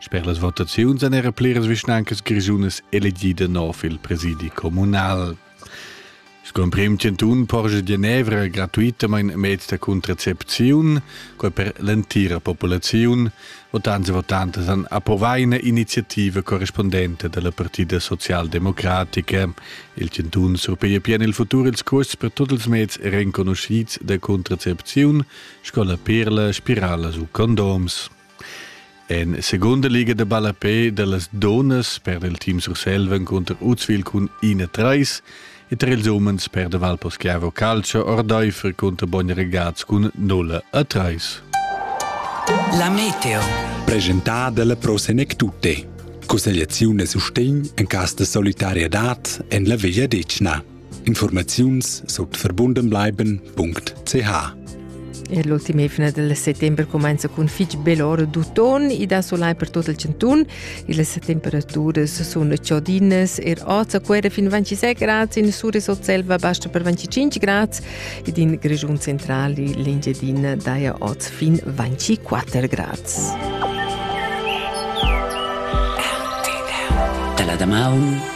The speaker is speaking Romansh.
Sper las votaziuns èn era pliras vischnancas grischunas elegidas nov il presidi communal. Sco emprim chantun porscha Genevra gratuitamain meds da contracepziun, quai per l'entira populaziun. Votants e votantas han approvà ina iniziativa correspondente dalla Partida socialdemocratica. Il chantun surpiglia pien il futur ils cuosts per tutti ils meds renconoscids da contracepziun, sco la perla, spirala u condoms. En segunda liga de ballapé dellas donas per il team Surselva contro Uzwil cun 1-3 e tra ils umens per de Valposchiavo Calcio Ordeifer contro Bogn Regaz cun 0-3. La meteo. Presentat dalla Pro Senec Tutte. Consigliazione e sustegn en cas de solidarietà en la Veglia Decna. Informaziuns sut verbundenbleiben.ch Er l'ultim efna del settembre comenza cun fitg bel ora d'uton e da solai per tot il centun. Les temperaturas sun ciodinas, er oz a quera fin 26 grads, in sur Selva basta per 25 grads ed in Grigiun centrali l'Engiadina daia oz fin 24 grads. Dalla Damaun